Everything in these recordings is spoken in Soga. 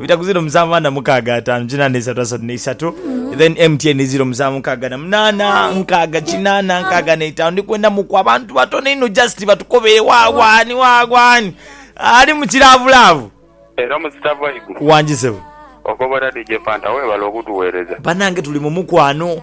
Bitaku ziro musanvu ana mukaaga ataanu kinaana isatu asatu neisatu then MTN ziro musanvu nkaaga na munaana nkaaga kinaana nkaaga neitaanu ndi kwenda muku abantu batono inho just batukobere wawa ani wawa ani ali mu kilaavulaavu Era musita vibe. wangi sebo. Okobola DJ Fanta webale okutuwereza. Banange tuli mu mukwano.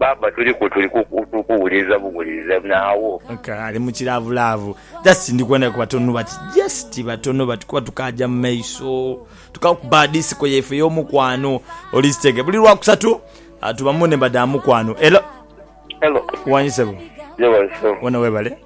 Baaba tuli ku tuli ku tuli kuwuliriza buwuliriza nawo. Nka ali mu kilaavulaavu. Just ndi kwenda ku batono bati, just batono bati kuba tukaaja mu maiso. Tukakuba disiko yaife ey'omukwano. Oli sitege. Buli Lwakusatu tuba mu nhemba dha mukwano. Hello. Hello. Wangi sebo? Yeebale sebo. Wena weebale.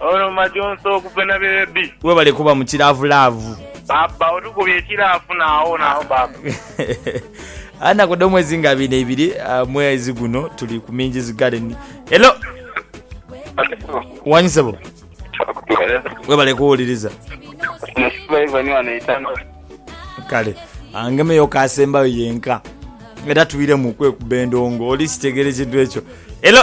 Ono majonsa okuva na beebi. Webale kuba mu kilaavu laavu. Baba otukubye ekilaafu naawo naawo baba. Anaku dho mwezi nga abiri neibiri mwezi guno tuli ku Minji's Garden. Hello. Wanyu sebo. Webale kuwuliriza. Kale angemeyo ku asembayo yenka era twiremu okwekuba endongo oli kitegeere ekintu ekyo. Hello.